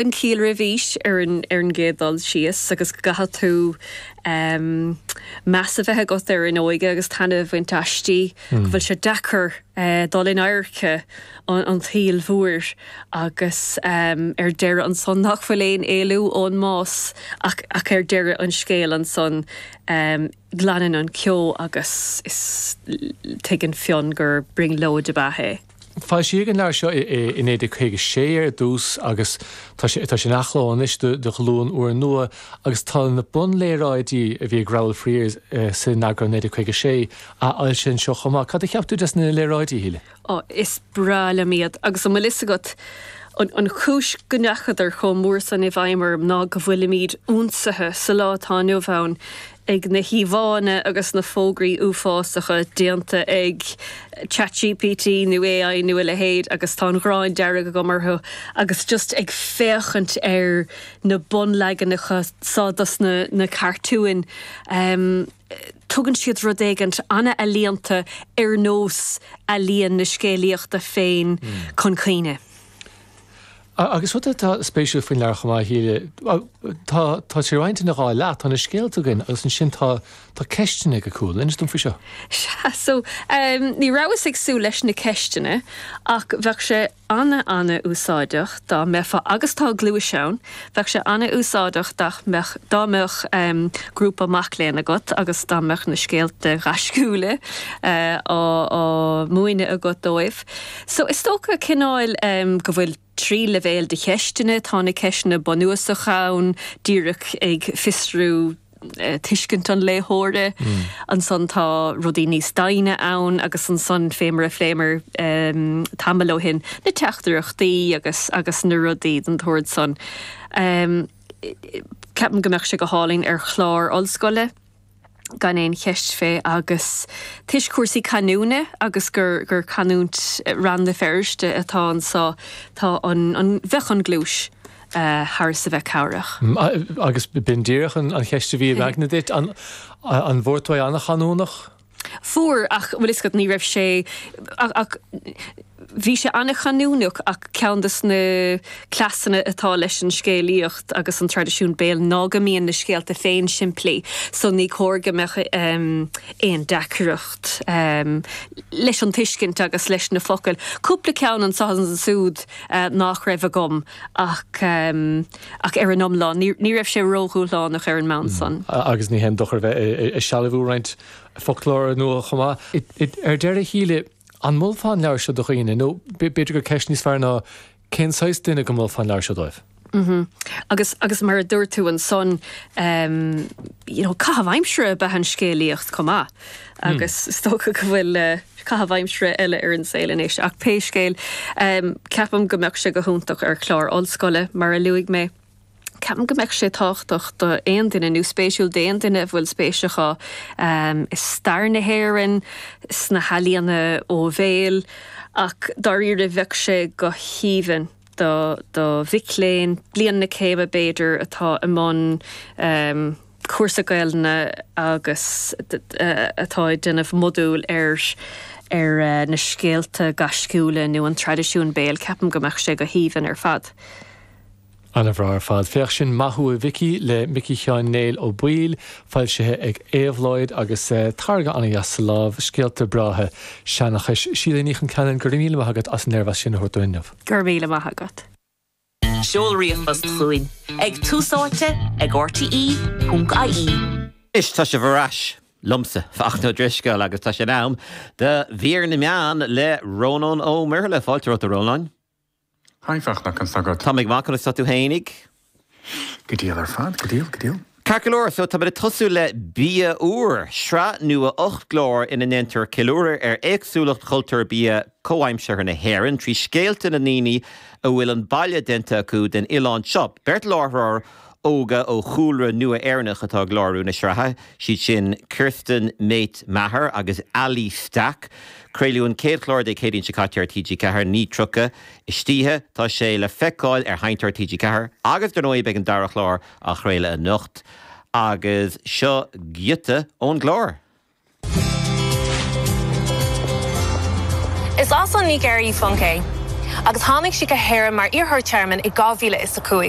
an chiall roimis aois ar an gcéad dul síos agus go gcaithfidh tú meas a bheith agat ar an óige agus taitneamh a bhaint aisti, go bhfuil sé deacair dul in adharca an tsaoil mhóir agus ar deireadh ansan nach bhfuil aon éalú ón mbás ach ar deireadh an scéil ansan. Glanann an ceo agus is tuigeann Fionn gur brionglóid ab ea é. Foilsíodh an leabhar seo i 1956 ar dtús agus tá sé in athchló anois do ghlúin úr nua agus tá na bunléaráidí a bhí ag Rowel Friers san eagrán 1956 athfhoilsithe anseo chomh maith. Cad a cheap tú des na léaráidí, a Shíle? Ó, is breá liom iad, agus an bhfuil fhios agat, an chúis go ndeachadar chomh mór san i bhfeidhm orm ná go bhfuilimid ionsaithe sa lá atá inniu ann ag na híomhánna agus na fógraí uafásacha déanta ag ChatGPT nó AI nó a leithéid agus tá an ghráin dearg agam orthu agus just ag féachaint ar na bunleaganacha so dos na cartúin. tugann siad rud éigin an-ealaíonta ar nós ealaíon na scéalaíochta féin chun cuimhne. Agus rud atá spéisiúil faoin leabhar chomh maith a Shíle, tá sé roinnte ina dhá leath, tá na scéalta againn agus ansin tá ceisteanna ag a chúl. Inis dom faoi seo. Sea, so, ní rabhas ag súil leis na ceisteanna ach bheadh sé ana ana úsáideach dá mbeifeá agus tá gluais ann bheadh sé ana úsáideach dá mbeadh dá mbeadh em grúpa mac léinn agat agus dá mbeadh na scéalta gaisciúla eh á á múineadh agat dóibh so is dócha cineáil em go bhfuil trí leibhéal de cheisteanna tá na ceisteanna bunúsacha ann díreach ag fiosrú tuiscint an léitheora. Ansan tá rudaí níos doimhne ann agus ansan fé mar a phléamar tamall ó shin na teachtaireachtaí agus agus na rudaí den tsórd san. Ceapaim go mbeadh sé go hálainn ar chlár ollscoile, gan aon cheist fé agus toisc cúrsaí canúna agus gur gur canúint Rann na Feirste atá anseo tá an an bheadh an gluais, thar is a bheith cabhrach. Agus b'in díreach an cheist a bhí im aigne duit, an bhfuair tú é an-chanúnach? Fuair, ach bhuel tá fhios agat, ní raibh sé, ach bhí sé an-chanúnach ach ceann dos na cleasanna atá leis an scéalaíocht agus an traidisiún béil ná go mbíonn na scéalta féin simplí so ní cóir go mbeadh aon deacracht leis an tuiscint agus leis na focail. Cúpla ceann anseo is ansúd. nach raibh agam ach ach ar an iomlán ní raibh sé ródhúshlánach ar an mbonn san. Agus ní haon dochar a bheith ag sealbhú roinnt foclóra nua chomh maith. Ar deireadh a Shíle, an molfá an leabhar seo do dhaoine, nó b'fhéidir gur ceist níos fearr ná cén saghas duine go molfá an leabhar seo dóibh? Agus, agus mar a dúirt tú ansan ehm you know caitheamh aimsire a b'ea an scéalaíocht chomh maith agus is dócha go bhfuil eh caitheamh aimsire eile ar an saol anois ach pé scéal ehm ceapaim go mbeadh sé go hiontach ar chlár ollscoile mar a luaigh mé. Ceapaim go mbeadh sé tábhachtach do aon duine nó spéisiúil d'aon duine a bhfuil spéis acu ehm i stair na hÉireann, sna healaíona ó bhéal ach dáiríre bheadh sé go haoibhinn, do do mhic léinn, bliain na céime b'fhéidir, atá i mbun cúrsa Gaelainne agus atá ag déanamh modúil ar ar na scéalta gaisciúla nó an traidisiún béil, ceapaim go mbeadh sé go haoibhinn ar fad. An-bhreá ar fad. Féach sin Maith thú a Mhicí le Micí Sheáin Néill Ó Baoill, foilsithe ag Éabhlóid, agus táirge an-deas sa lámh, scéalta breátha seanchais. Síle Ní Choincheannain, go raibh míle maith agat as an léirmheas sin a thabhairt dúinn inniu. Go raibh míle maith agat. Seol ríomhphost chugainn ag Tús Áite ag RTÉ.ie. Anois tá sibh ar ais liomsa, Fachtna Ó Drisceoil, agus tá sé in am do Mhír na Meán le Rónán Ó Muirthile. Fáilte romhat, a Rónáin. Haigh, Fachtna, conas tá agat? Táim go maith, conas tá tú fhéinig? Go diail ar fad, go diail, go diail. Ceart go leor, so táimid ag tosú le Bia Úr, sraith nua ocht gclár ina ndéantar ceiliúradh ar éagsúlacht chultúr bia comhaimseartha na hÉireann trí scéalta na ndaoine a bhfuil an baile déanta acu den oileán seo. Beirt láithreoir óga ó chúlra nua Éireannach atá ag láithriú na sraithe, siad sin Kirsten Mate Maher agus Ali Stack. Craoladh an chéad chlár Dé Céadaoin seo caite ar TG4, 9:30 istoíche, tá sé le feiceáil ar Sheinnteoir TG4 agus dar ndóigh beidh an dara chlár á chraoladh anocht agus seo giota ón gclár. Is as an Nigéir í Funke, agus tháinig sí go hÉirinn mar iarrthóir tearmainn i 2005.